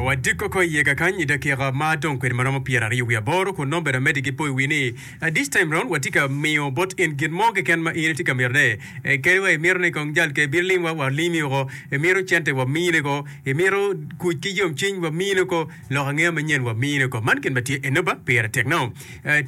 Wadiko ko iye kakany i dakika ma dong kwede ma romo pyeraryo wiye aboro, kun nongo bene amedde ki poyowi ni, This time round watye ka miyo bot in gin mo keken ma in itye ka mitone. Kadi wa imito ni kong jal keken bino limwa, walimi woko. Imito cente, wamini woko. Imito kuc ki yomcwiny, wamini woko. Lok angeya manyen, wamini woko. Man gin ma tye Enoba, pire tek nao.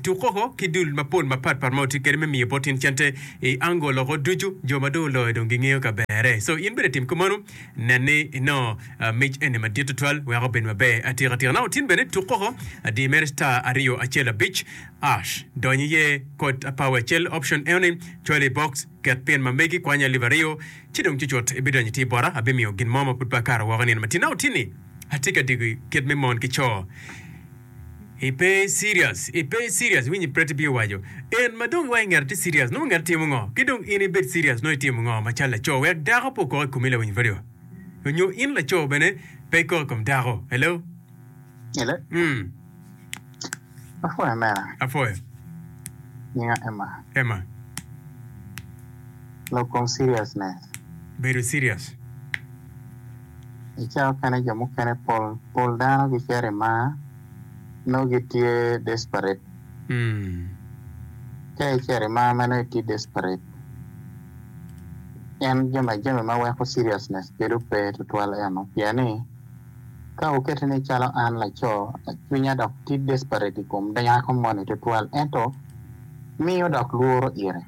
Tuk koko ki dul mapol mapat pat ma watye kede me miyo bot in cente i ango loko ducu. Jo ma dong oloyo dong gingeyo ka bere. So in bene tim kumanu. Nen ni inongo mic eni madit tutwal wek obed maber atika tika. Nongo tin bene tuk koko adir mere star aryo acel abic ash. Dony iye kod apawi acel option eoni cwalo i box ket pin ma megi kwanya alip aryo ci dong cucut ibidonyo itir bota abimiyo gin mo ma pud pe akato woko i nino matir. Nongo tin ni atye ka digi kit me mon ki co. Ipe serious, ipe serious, iwinyi Pretty Bee owaco. En ma dong iwaco ngete tye serious, nongo ngete timo ngo? Ki dong in ibed serious nongo itimo ngo ma cal laco wek dako pe okok ikomi lawiny radio? Onyo in laco bene pe ikok ikom dako? Hello? Hello? Mm. Apwoyo mera. Apwoyo. Nyinga Emma. Emma. Lok kom seriousness. Bedo serious. Icaa kene jo mukene pol pol dano gicito i mar nongo gitye desperate. Ka icito i mar ma nongo itye desperate en jami jami ma weko seriousness bedo pe tutwal eno pien ni ka wuketi ni calo an laco cwinya dok tye desperate i kom dako moni tutwal ento miyo dok lworo ite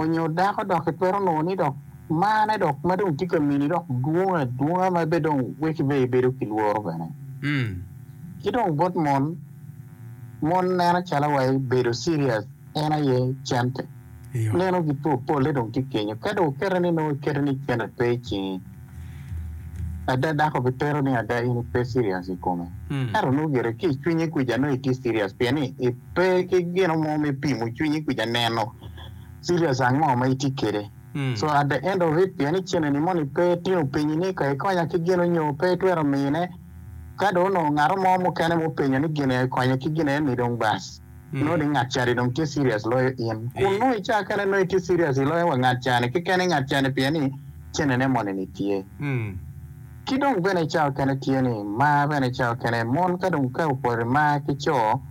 onyo dako dok itwero nongo ni dok Marne dok ma dong tye ka mini dok dwong adwonga ma bene dong weko ibedo ibedo ki lworo bene. Ki dong bot mon, mon neno calo wa ibedo serious en aye cente. Nenogi po polle dong tye kenyo. Ka dong okete ni nongo ikete ni cente pe i cingi, ada dako bitero ni ada in ipe serious i kome. Ento nongo gire ki i cwinyi kuca nongo itye serious pien ni ipe ki gino mo me pimo cwinyi kuca neno serious ango ma itye kwede. So at the end of it pien ni cene ni moni pe tino penyi ni ka ikonya ki gin onyo pe itwero mine ka dong onongo ngato mo mukene ma openyo ni gine ikonye ki gine ni dong bas nongo ni ngat cani dong tye serious loyo in kun nongo ica kene nongo itye serious iloyo wa ngat cani keken i ngat cani pien ni cene ne moni ni tye ki dong bene ica okene tye ni mar bene ica okene mon ka dong ka opori mar ki coo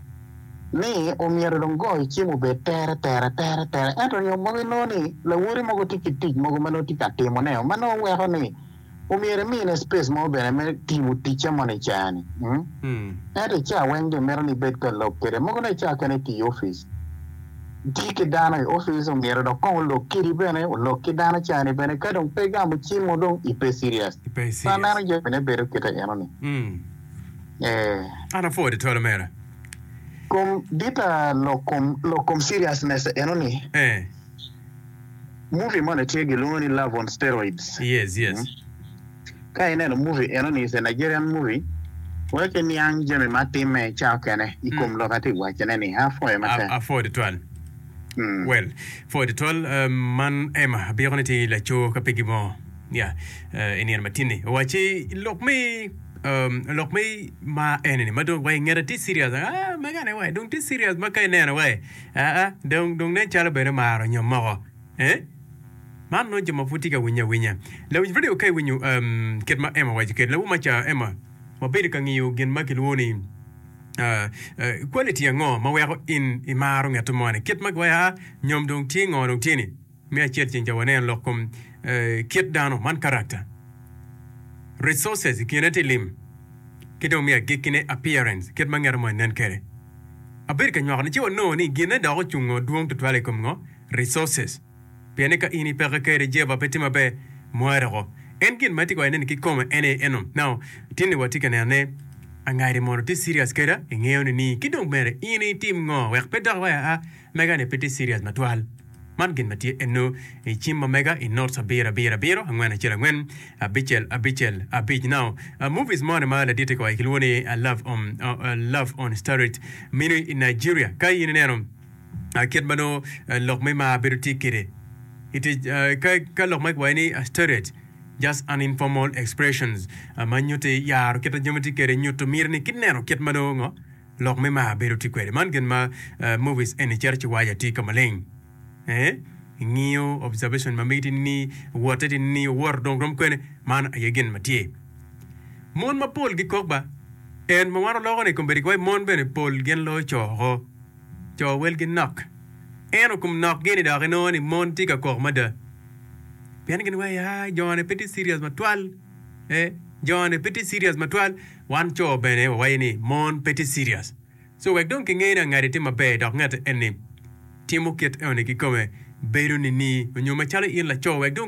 ni omyero dong goyo cim obed tere tere tere tere, ento nio mogo inongo ni lawoti mogo tye ki tic mogo ma nongo tye ka timoneo ma nongo weko ni omyero imine space mo bene me timo ticce moni i caa-ni. Ento i caa weng dong mito ni ibed ka lok kwede, mogo nongo i caa kene iti i opic, iti ki dano i opic, omyero dong kong olok kidi bene, olok ki dano caa-ni bene, ka dong pe igamo cim o dong ipe serious. Pe aneno jami-ni bedo kite enoni, ee. An apwod i tol omera. Kom dita lok kom lok kom seriousness enoni. Eh. Movie moni tye gilwongo ni Love on Steroids. Yes, yes. Mm. Ka ineno movie enoni is a Nigerian movie wek iniang jami ma timme ca okene i kom lok atye ka wacone ni a foyo ma tek. Afoyo tutwal. Mm. Well, foyo tutwal eh, man Emma abiko ni tye laco ka pegi mo. Nia, i nino matin-ni, owacci, Lok me, um, lok me ma eni-ni, ma dong wa i ngete tye serious, ah, mega-ni wa, dong tye serious ma ka ineno wa, ah, ah, dong, dong nen calo bene omaro nyom moko. Eh? Man nongo jo ma pud tye ka winye awinya. Lawinj redio ka iwinyo um, kit ma Emma owaco kede, lawu maca, Emma, wabedo ka ngiyo gin ma kilwongo ni uh, uh, quality ango ma weko in imaro ngete moni, kit ma giwaco, ah, nyom dong tye ngo dong tye-ni. Me acel ceng ca waneno lok kom kit dano man karakta, resources, i kine tye lim ki dong me agikki ne appearance, kit ma ngete mo nen kede. Abedo ka nywako ni ci wanongo ni gine dok ocungo dwong tutwal i kom ngo? Resources. Pien ni ka in i peke kede Jehovah pe tye maber, mware oko. En gin ma itye ka waco neni ki kome en aye eno. Now, tin ni watye ka neno ne, angadi mono itye serious keda? Ingeyo ni ni? Ki dong bene in itim ngo wek pe dok iwaco aa, Mega ni pe tye serious matwal. Man gin ma tye eno i cim ma mega i notes abiro abiro abiro angwen acel angwen abicel abicel abic now movies moni ma laditi koi kilwongo ni love on love on starret mini i Nigeria ka in ineno kit ma nongo lok me mar bedo tye kede ite ka ka lok ma kiwayo ni starret just an informal expressions ma nyuti yaro kita jami tye kede nyuto miri ni kineno kit ma nongo ngo Lok me mar bedo tye kwede. Man gin ma movies eni cito ci waco atika maleng. Ee, i ngiyo observation ma miti ni wote ti ni owoto dong rom kwene, man aye gin ma tye. Mon mapol gikok ba. En ma wan oloko ni kombedi ki waco mon bene pol gin loyo co oko. Co welgi nok. Ento kom nok gi ni dok inongo ni mon tye ka kok mada. Pien gin waco, aa, jone pe tye serious matwal. Ee, jone pe tye serious matwal. Wan co bene wawaco ni mon pe tye serious. So wek dong kinge ni angadi tye maber dok ngete enni timo kit enoni kikome bedo nining onyo macalo in laco wek dong